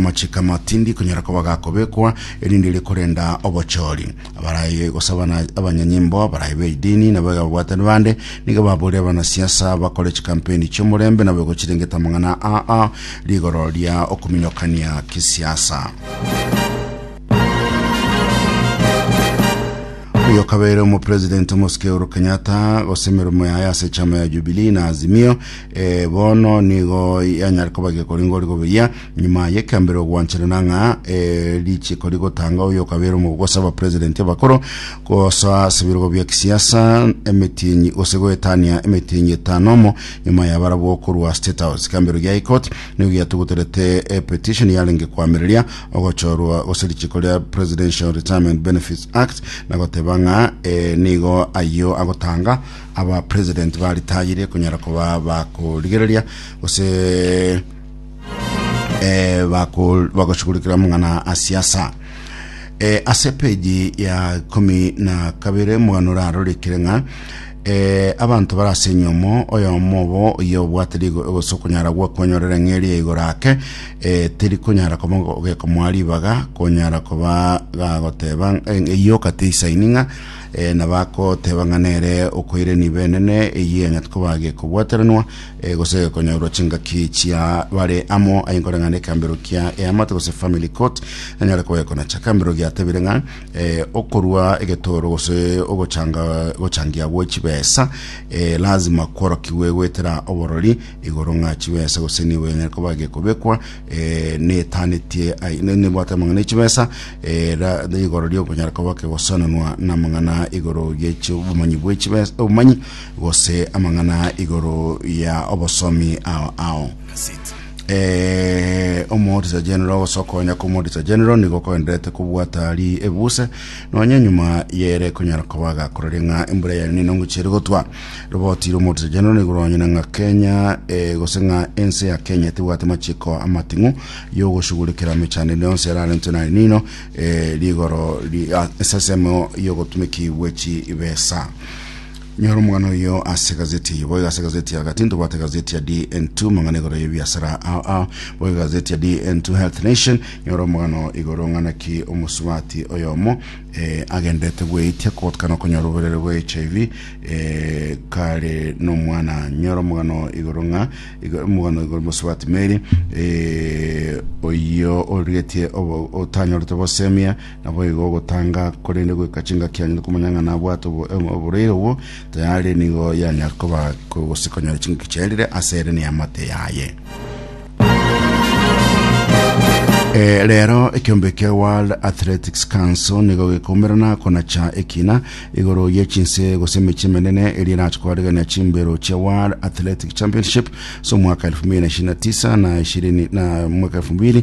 Amachiko ama tindi konyara koba gakobekwa, erinde ere korenda obochori. Abaraye gosaba na abanyanyimbo, abaraye b'edini, na abaiga babwatani bande, nigo baboria abanasiasa, abakore chikampeni chi'omorembe, na abaigwa chirengeta amang'ana aa rigoro ria okuminokania kisiasa. Oyo okabeire omopresident omosike Uhuru Kenyatta gose emeremo yaye ase echama ya Jubilee na Azimio eh, bono nigo yanyare koba gekoringa ori goberia Nyuma y'ekambere ogwancherana ng'a eh, richiko rigotanga oyo okabera omogogosa aba president abakoro gosa ase ebirogo bia kisiasa emetienyi gose goetania emetienyi etano omo nyuma yabarabwo okorwa state house kambero gia high court nigo giatuguterete epetition yarenge kwamireria ogochorwa gose richiko ria presidential retirement benefits act na goteba ng'a eh, nigo ayio agotanga aba president baritayire konyara koba bakorigereria gose eh, bako- bagoshughulikira mung'ana a siasa eh, ase peji ya ikumi na kabere mugano orarorikire ng'a eh, abanto barase enyomo oyomo obo oye obwate rigo egose okonyara gwakonyorera eng'eri ya igoro ake eh, teri konyara koba ogekomoa ribaga konyara koba gagoteba eh, eyio kati isaini ng'a eh, nabakoteba ng'a nere okoireni benene eyio eng'ati koba gekobwateranwa E, gose konyorwa chingaki chia bare amo aye nkore ng'a nekambero kia eamate gose family court nanyare kogekona cha kambero giatebire ng'a e, okorua egetoro gose ogochanga gochangia gwe chibesa e, lazima kworokigwe gwetera oborori igoro ng'a chibesa gose nigo enyare koba gekobekwa e, netanetie ai- ne- nebwate amang'ana echibesa e, ra- igoro riokonyara koba kegosananwa na amang'ana igoro giechio obomanyi bwechibesa obomanyi Gose amang'ana igoro ya obosomi ao ao. Eh, omorisa general gose okonya komorisa general nigo koenderete kobwata ri ebuse nonya nyuma yere konyara kobaga korore ng'a embura yari nene ngochire gotwa roboti romorisa general nigo ronyene ng'a kenya eh, gose ng'a ense ya kenya tebwate machiko amating'u yogoshugurikira mechando ende yonse yararentwe nari nino eh, rigoro ri- ah, esasemo yogotumeki bwechi besa Nyora omogano oyo ase gazeti eye. Boiga ase gazeti ya Agati ntobwate gazeti ya DN2 mang'ana igoro y'ebiasara ao ao. Boiga gazeti ya DN2 Health Nation nyora omogano igoro ng'a naki omosubati oyomo eh, agenderete bweitia kogotakana okonyora oborere bwa HIV eh, kare nomwana. Nyora omogano igoro ng'a igo- omogano igoro mosubati Mary eh, oyio origetie obo- otanyorete obosemia Naboigo ogotanga, korende goika chingaki anyare komanya ng'a nabwate oboreire obwo tayari, nigo yanyare koba gose konyora chingaki chiaerire ase ere neamate yaye. Eh, rero ekiombe kia World Athletics Council nigo gekomerana konacha ekina igoro ye chinse gose emechi emenene eri erache koaregania chimbero chia World Athletic Championship so mwaka 2029 na 20 na mwaka 2000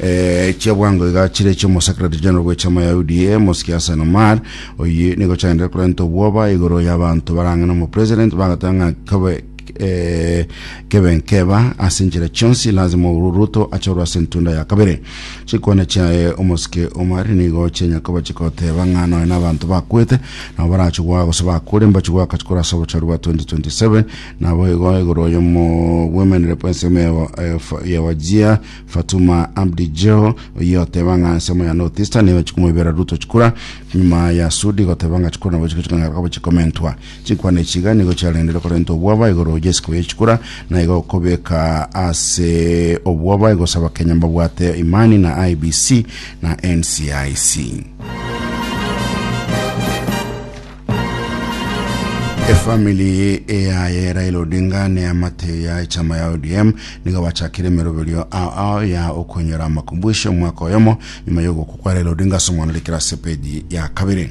Eh, chia bwango iga chire chi'omosecretary general bw'echama ya UDA Mosiki Hassan Omar oyi nigo chaendire korenta obwoba igoro y'abanto barang'ana omopresident bagateba ng'a kabe eh, kebe nkeba ase enchera chionsi lazima Uhuru Ruto achorwe ase entunda ya kabere chikwane chiaye omosike Omar nigo chianyakoba chikoteba ng'a nonya n'abanto bakwete nabo barachigwa gose bakure mbachigwa akachikora ase obochori bwa 2027 Naboigo igoro y'omobwemereri bw'ensemo ya Wajir, Fatuma Abdi Jeho, oyio oteba ng'a ensemo ya North Eastern nigo chikuma ibera duto chikura, nyuma ya Sudi goteba ng'a chikura nabo chikochika ng'a kabo chikomentwa. Chinkwana echi iga nigo chiarengereire korenta obwoba igoro y'esiko ye chikura, na igo kobeka ase obwoba igose Abakenya mbabwate imani na IEBC na NCIC. efamili eyaye Raila Odinga ne amate ya echama ya ODM nigo bachakire emeroberio ao ao ya okonyora amakumbuisho omwaka oyomo nyuma ya ogokwa kwa Raila Odinga ase omwana orikire ase epeji ya kabere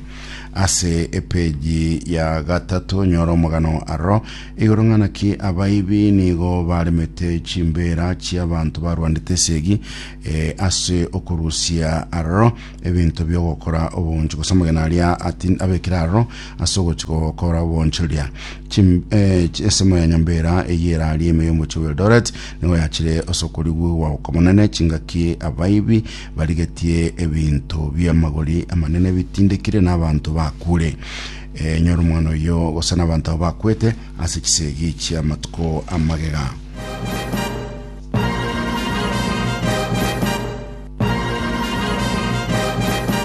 ase epeji ya gatato nyora omogano aroro igoro ng'ana ki abaibi nigo baremete chimbera chiabanto barwandete esegi eh, ase okorusia aroro ebinto bi'ogokora obonge, gose omogeni aria ati- abekire aroro ase ogochia gokora obonchoria. Chim- eh, chi- esemo ya nyomba era eyio eraria ime y'omochie bwa Eldoret nigo yachire ase okorigugwa okomonene chingaki abaibi barigetie ebinto bi'amagori amanene bitindekire na abanto bakure. Eh, nyora omwana oyio gose na abanto abo bakwete ase chisegi chi'amatuko amagega.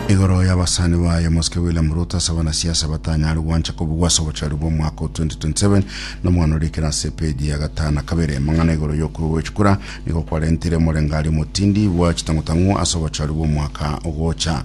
Igoro y'abasani baye Mosike William Ruto ase abanasiasa batanyare gwancha kobugwa ase obochari bw'omwaka o 2027 na omwana orikire ase epeji ya gatano na kabere. Mang'ana igoro y'okorwa gw'echikura nigo kwarentire omorengari omotindi bwa chitang'utang'u ase obochari bw'omwaka ogocha.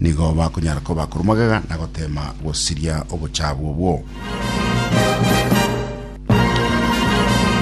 Nigo bakonyara koba akoru magega na goteema gosiria obochaabu obwo.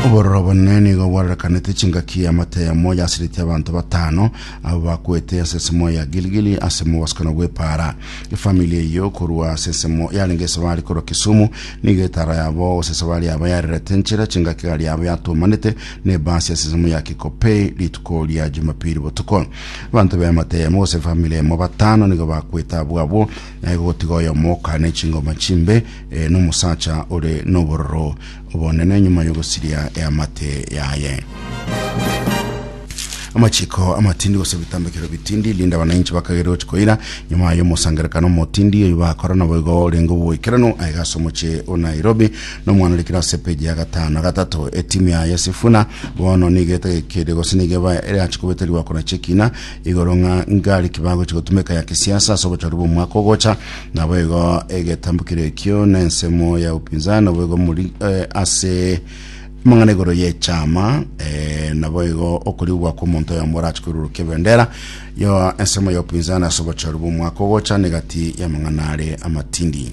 Obororo obonene nigo bwarorekanete chingaki y'amata yamo yasiretie abanto batano abo bakwete ase ensemo ya Gilgili ase mobasikano bw'epaara. Efamili eyio korwa ase ensemo yarenge esabari korwa Kisumu nigo etaaro yabo gose esabari yabo yarerete enchera chingaki egari yabo yatumanete na ebaasi ase ensemo ya Kikopey rituko ria Jumapili botuko. Abanto b'emate eyemo gose efamili eyemo batano nigo bakwete abwo abwo, na igo gotiga oyomo oka n'echingoma chimbe, ee, n'omosacha ore n'obororo obonene nyuma y'ogosiria eamate yaye. Amachiko amatindi gose ebitambekero bitindi, rinde abanainchi bakagere gochi koira nyuma y'omosangerekano omotindi oyio bakora, naboigo orenge oboikeranu aiga ase omochie o Nairobi, nomwana ore kirasi epeji ya gatano gatato etimu ya yesifuna bono nigo etegekeire gose nigo eba erachi kobeta riwako na chekina igoro ng'a ngari kibagochi gotumeka ya kisiasa ase obochori bw'omwaka ogocha nabo igo egetambukire ekio na ensemo ya upinzani nabo igo muri eh, ase amang'ana igoro y'echama eh, nabo igo okorigwa kw'omonto oyomo orachi kwerurukwa ebendera yo ensemo ya upinzani ase obochori bw'omwaka ogocha negati y'amang'ana are amatindi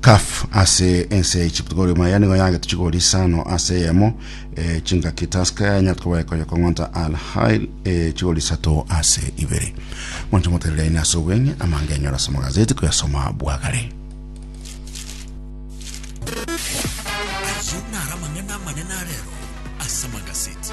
Caf ase ense ya Egypt gori maya nigo yagete chigori isano ase eyemo eh, chingaki Tusker ya Nyatko baekonya kong'onta Al Hail eh, chigori isato ase ibere. Mwancho moterere ine ase obweng'e amange enyora ase magazeti koyasoma bwagare. Ayio naro amang'ana amanene arero ase amagazeti.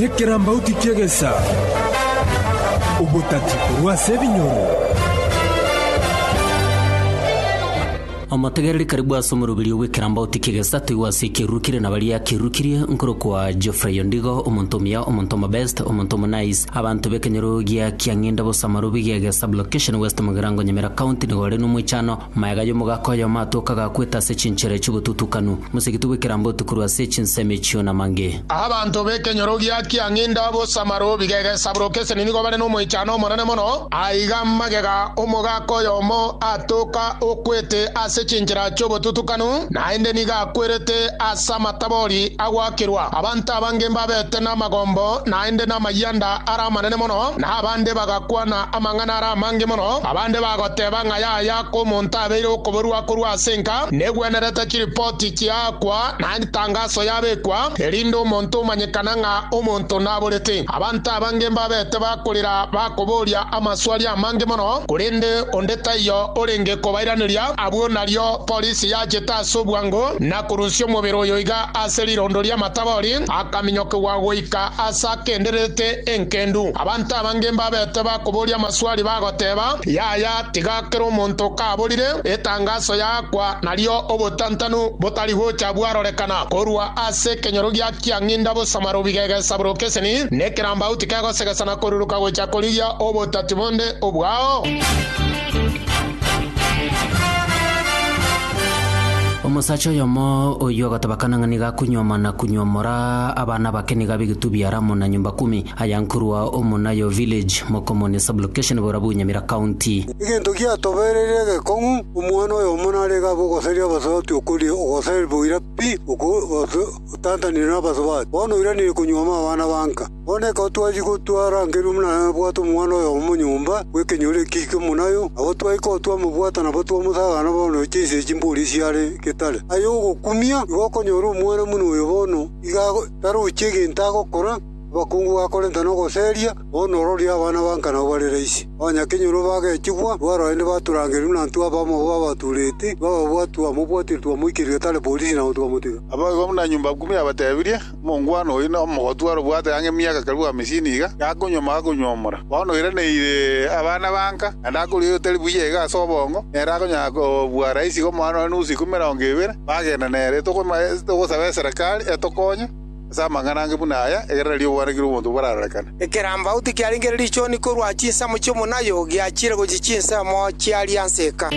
Nekerambauti ki'egesa, obotati korwa ase ebinyoro. Omotegereri karibu ase omoroberio bw'ekerambauti ki'egesa toigwa ase ekieruru kire na baria kerukirie, nkorokwa Geoffrey Ondigo, omonto omuya, omonto omobest, omonto omonaice. Abanto b'ekenyoro gia Kiang'inda bosa Marobi gi'egesa blocation West Mugirango Nyamira County nigo ore nomoichano. Maega y'omogaka oyomo atoka agakweta ase chinchera echi'ogotutukanu, mosegitu bw'ekerambe otukurwe ase echinsemo echio namange. Abanto b'ekenyoro gia kiang'inda b'osamaro bigegesaburoka eseni nigo bare n'omoichano omonene mono. Aiga magega omogaka oyomo atoka okwete ase chinchera chi'obotutukanu, naende nigo akwerete ase amatabori agwakerwa. Abanto abange mbabete namagombo naende namayianda are amanene mono, na abande bagakwana Amang'ana are amange mono. Abande bagoteeba ng'a yaya kw'omonto abeire okoborua korwa ase enka, negwenerete chiripoti chiaakwa na etangaso yabekwa, erinde omonto omanyekana ng'a omonto naborete. Abanto abange mbabete bakorera bakoboria amaswali amange mono, korende onde taiyo orenge kobairaneria. Abwo nario polisi yachete ase obwango na korusia omobere oyo iga ase rirondo ri'amatabori, akaminyokigwa goika ase akendererete enkendu. Abanto abange. Abange mbabete bakoboria amaswali bagoteeba, Yaya, tiga kera omonto okaborire etangaso yaakwa nario obotantanu botari gocha bwarorekana korwa ase ekenyoro gia kiang'inda bosamaro bigegesa buru keseni, nekerambau tikegosegesa na koruruka gocha korigia obotati bonde obwao. Omosacha oyomo oyio agatobakana ng'a niga akunyuoma na kunyuomora abana bake niga b'egetubia Ramu na nyomba kumi. Aya nkorwa Omonayo Village, Mokomoni Sub-location, Borabu, Nyamira County. Egento giatobereirie egekong'u, omwana oyomo narenge abe ogoseria abasubati okoria ogoser boira pi oko gose otantanire nabasubati. Bono oiranire konyuoma abana ba nka. Bono ekero twachia gotwa arangerwe buna nabwate omwana oyomo nyomba bw'ekenyoro eki ki'omonayo, nabo twaika otwa amabwata nabo twamosaga na bono chinse echi mbori chiare getare. Aye ogokumia, igo okonyora omwana buna oyo bono iga tarochia egento agokora. Abakungu bakorenta nogoseria, bono ororie abana ba nka nao bare raisi. Onye kenyoro bagechigwa, bwarorende baturangerigwe na ntwe abamo babatureti, bababwatwe amo bwatiri twamoikereria tare polisi na gonto bamotiga. Abaibwa buna nyomba ikumu yabatebirie, Omongwana oyi nomogoti arobwate ang'e emiaka karibu hamesini iga, gakonyuoma agakonyuomora. Bono oiraneire abana ba nka, naende akoria oyotari buya iga ase obongo, nere akonyara kobua raisi iga omwana one nusu ikumu emerongo ebere, bagenda nere. Togosaba eserekari etokonye. Ase amang'ana ange buna aya, egerera ri'obwanake ri'omonto borarorekane. Ekerambau tikiarenge richoni korwa chinsemo chi'omonayo giachire gochia chinsemo chia rianseka.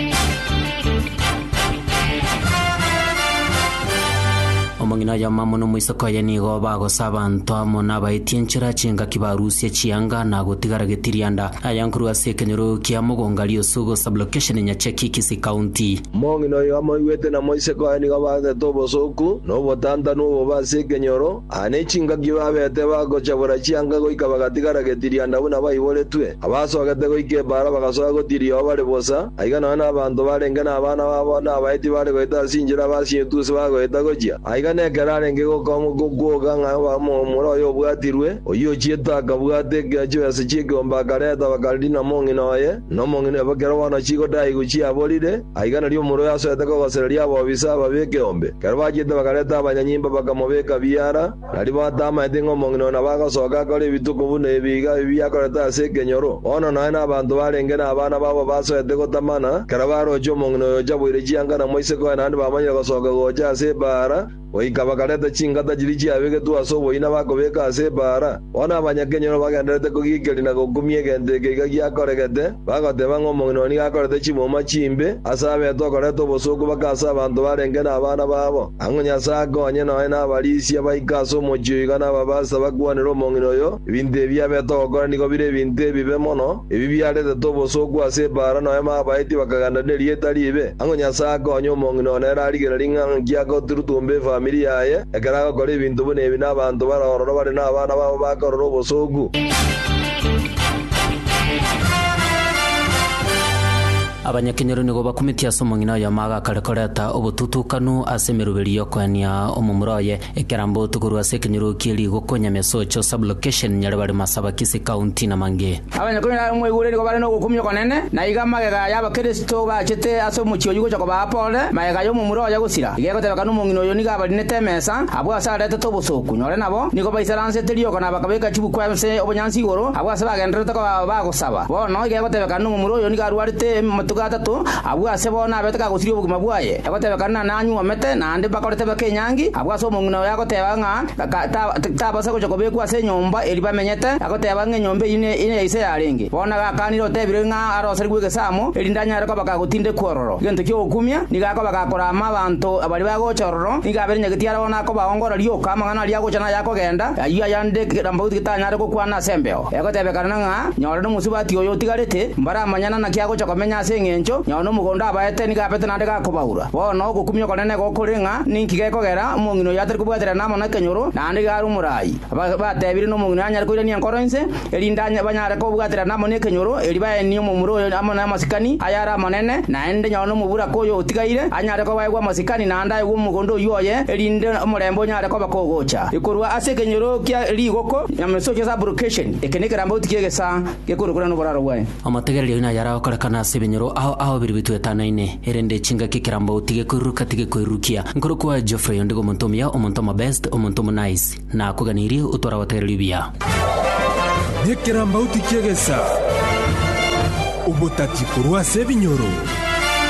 Omong'ina oye omamo na omoiseke oye nigo bagosa abanto amo nabaetie enchera chingaki barusie chianga na gotigara getirianda. Aya nkorwa ase ekenyoro kia Mogonga Riosugu Sub-location Nyacheki Kisii County. Omong'ina oyo amoigwete na moiseke oye nigo abagete obosooku na obotantanu obobe ase ekenyoro, aa ne chingaki babete bagochabora chianga goika bagatigara getirianda buna baiboretwe, abasogete goika ebaara bagasoa gotiria oo bare bosa, aiga nonya nabanto barenge nabana babo na abaeti bare goeta ase inchera abasinyetusi bagoeta gochia, aiga nekero arenge gokong'wa gokwoga ng'a omura oye obwatirwe, oyio ochiete akabwata ekeochio ase chiekeombe akareta bakarina mong'ina oye, na omong'ina oye bakera bono chigodaigu chiaborire, aiga nario omoro oyo asoete kogosereria abobisa aba b'ekeombe. Ekero bachiete bakareta abanyanyimba bakamobeka biara, na ribaao atamaeti ng'a omong'ina oyo nabo agosoka akore ebituko buna ebi iga ebibe akorete ase ekenyoro. Bono naye na abanto barenge nabana babo basoete gotamana, ekero baroche omong'ina oyo ocha boire chianga na moiseke oye naende bamanyire gosoka gocha ase ebaara, Goika bakareta chingata chiria chiabegetwe ase oboina bakobeka ase ebaara. Bono abanyakenyoro bagendererete kogiikeria na gokumia egento eke iga giakoregete, bagoteba ng'a omong'ina oria nigo akorete chimuma chimbe ase abeete okoreta obosooku bake ase abanto barenge nabana babo. Ang'u Nyasae akonye nonya nabarisia baike ase omochie oyo iga nababase bakwanere omong'ina oyo, Ebinto ebi abete ogokora nigo bire ebinto ebibe mono, ebi biaretete obosooku ase ebaara nonya babaetie bakagenda nerieta riibe. Ang'o Nyasae akonye omong'ina one ere arigereri ng'a nki agoturutumba efamiri yaye ekero agokora ebinto buna ebi nabaanto bare ororo bare nabana babo bakorora obosooku? Abanyakenyoro nigo bakumeti ase omong'ina oyomo agakare koreta obotutukanu ase emeruberio y'okoenia omomura oye. Ekerambo tokorwa ase ekenyoro kie rigoko Nyamesocho Sub-location Nyaribari Masabakisi County na mang'e. Abanyakonyora aba moigure nigo bare nogokumia okonene, na iga magega y'Abakristo bachete ase omochie oyio gocha kobaa pole, magega y'omomura oye gosira. Iga egotebeka nomong'ina oyo nigo abarinete emesa, abwo ase aretete obosooku, nyore nabo nigo baisaransete rioka na bakabeka chibukwa ense obonyansi igoro, abwo ase bagendererete koba bagosaba. Bono iga egotebeka nomomura oyo nigo arwarete amatuko atato, abwo ase bono nabete kagosiria obogima bwaye. Egotebekana nanyuomete naende bakore tebeka enyangi, abwo ase omong'ina oye agoteba ng'a tabasa gocha kobekwa ase enyomba eria bamenyete, agoteba ng'a enyomba eyio neya ise yarenge. Bono gakanire otebire ng'a aroserigwe egesaamo, erinde anyare koba gagotindekwa ororo. Egento ki'ogokumia, nigo akoba gakoraama abanto baria bagocha ororo, nigo aberenyagetie arabwo nakobaongora rioka amang'ana aria agocha na ayakogenda, ayio ayande Kerambaotu getanyare gokwana ase embeo. Egotebekana ng'a nyore nomosubati oyo otigarete, mbaramanyana naki agocha komenya ase engencho nyore nomogondo abaete nigo abete naende gakobaura. Bono ogokumia okonene nigo kore ng'a ninki gekogera omong'ina oyo atari kobwaterana amo nekenyoro naende iga are omoraai. Batebire nomong'ina oyo anyare koirania enkoro ense, erinde banyare kobwaterana amo nekenyoro, erio baenie omomura oyo amo namasikani aye are amanene, naende nyore nomoburaka oyo otigaire anyare koba aigwe amasikani naende aigwe omogondo oyio oye, erinde omorembe onyare koba kogocha korwa ase ekenyoro kia rigoko. Nyameso Chase Application Eke nekerambauti ki'egesaa gekorokora noboraro bwaye. Amategereri aino ayare agokorekana ase ebinyoro ao ao biri bitwetanaine, erende chingaki ekerambauti gekoiruruka tigekoirurukia. Nkorokwo aye Geoffrey, ondigo omonto omuya, omonto omobest, omonto omonice. Nakoganirie otware abategereri buya. Nekerambauti ki'egesaa, obotati korwa ase ebinyoro.